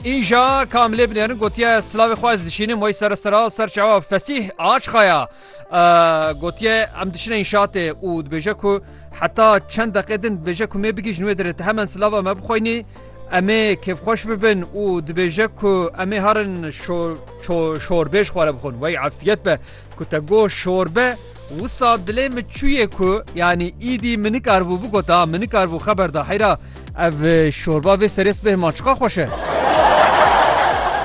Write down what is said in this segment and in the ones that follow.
Îja kamilê binêrin gotiye silavê xwe ez dişînim wey sere sera ser çawa fesîh açxaya gotiye em dişine înşatê û dibêje ku heta çend deqê din dibêje ku mê bigîjin wê dirê te hemen silava me bixweynî emê kêfxweş bibin û dibêje ku emê herin çorbêj xware bixwin wey efiyet be Ku te got şorbe, wisa dilê min çûyê ku yanî îdî min nikaribû bigota, min nikaribû xeber da heyra ev şorba vê serê sibehê ma çiqa xweş e.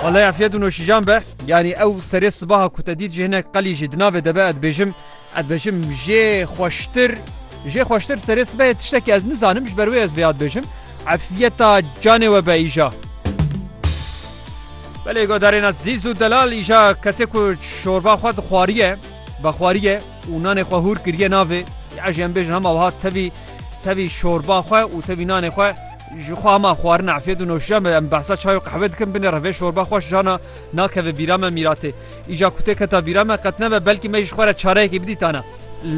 Wallay afiyet û noşîjan be. Yanî ew serê sibaha ku te dît ji hinek qelî jî di navê de be ez dibêjim ez dibêjim jê xweştir jê xweştir serê sibehê tiştekî ez nizanim ji ber wê ez vêya dibêjim. Efiyeta canê we be îja. Belê guhdarêna Zîz û Delal îja kesê ku çorba xwe dixwariye, vexwariye û nanê xwe hûr kiriye navê. Ya jî em bêjin hema wiha tevî tevî çorba xwe û tevî nanê xwe ji xwe hema xwarina efyed û noşiya me em behsa çay û qehwe dikin binê re vê çorba xweş jana nakeve bîra me mîratê. Îja ku tê keta bîra me qet nebe belkî me jî ji xwe re çareyekê bidîtana.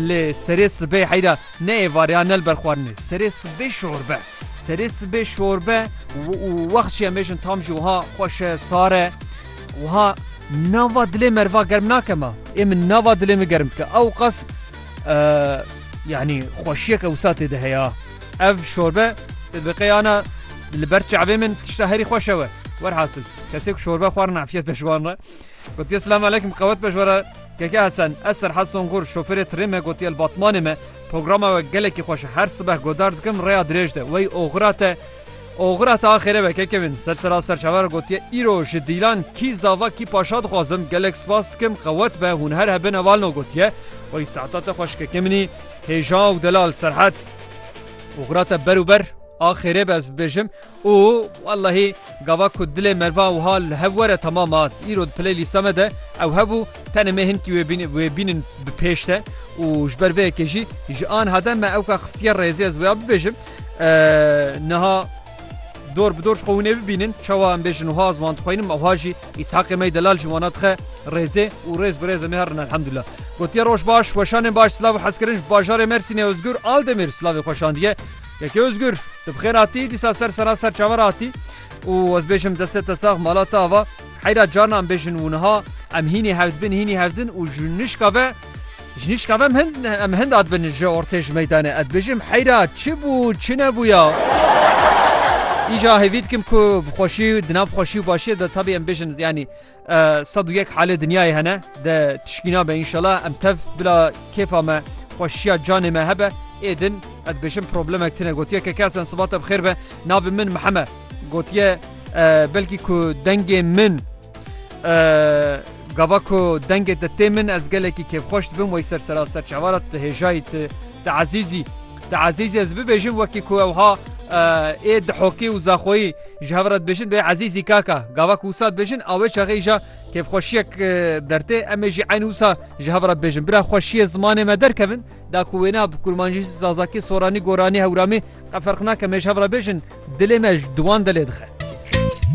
Lê serê sibê heyra ne êvarê ya ne li ber xwarinê. Serê sibê çorbe. Serê sibê şorbe û wext jî em bêjin tam jî wiha xweş e, sar e. Wiha nava dilê merva germ nake me. Ê min nava dilê min germ dike. Ew qas yanî xweşiyeke wisa tê de heya. Ev şorbe bi qeyana li ber çavê min tişta herî xweş ew e. Werhasil kesê ku şorbe xwarin efiyet be ji wan re. Gotiye silam aleyküm qewet be ji we re. Keke Hesen, ez Serhat Songur, şoferê tirê me gotiye li Batmanê me. Programa we gelekî xweş e. Her sibeh godar dikim rêya dirêj de. Wey oxira te oxira te axêre be keke min. Ser sera serçave re gotiye îro ji dîlan kî zava kî paşa dixwazim. Gelek spas dikim qewet be hûn her hebin evalno gotiye. Wey saeta te xweş keke minî. Hêja û delal serhet. Oxira te ber û ber axêrê be ez bibêjim. Û wellehî gava ku dilê mervan wiha li hev were temam a, îro di play lîsta me de ew hebû, tenê me hinkî wê bînin wê bînin bi pêş de û ji ber vê yekê jî ji anha de me ewka xistiye rêzê ez wêya bibêjim niha dor bi dor ji xwe hûnê bibînin çawa em bêjin wiha ez wan dixwînim ewha jî Îshaqê me Delal jî wana dixe rêzê û rêz bi rêz em ê herin elhemdulillah. Gotiye roj baş, weşanên baş, silav û hezkirin ji bajarê Mersînê Ozgur Aldemir silavê xweşandiye. Yekê Ozgur, tu bi xêr hatî, dîsa ser sera ser çaver hatî û ez bêjim destê te sax mala te ava heyra carna em bêjin û niha em hînî hevdibin hînî hevdin û ji nişka ve ji nişka ve em hind em hind adibin ji ortê ji meydanê ez bêjim heyra çi bû çi nebûya îja hêvî dikim ku bi xweşî di nav xweşî û başiyê de tabî em bêjin yanî Sed û yek halê dinyayê hene de tişkîna be înşela em tev bila kêfa me xweşiya canê me hebe ê din ez bêjim problemek tine gotiye ke kesen sibate bi xêr be navê min miheme gotiye belkî ku dengê min gava ku dengê te tê min ez gelekî kêfxweş dibim wey ser serasser çavara te hêjayî te te ezîzî Di Ezîzî ez bibêjim wekî ku ewha ê Dihokî û Zaxoyî ji hev re dibêjin dê Ezîzî kaka. Gava ku wisa dibêjin a wê çaxê îja kêfxweşiyek dertê em ê jî eyn wisa ji hev re bibêjin. Bira xweşiyê zimanê me derkevin da ku wêna bi kurmancî, zazakî, soranî, goranî, hewramî qe ferq nake em ê ji hev re bêjin dilê me ji wan de lê dixe.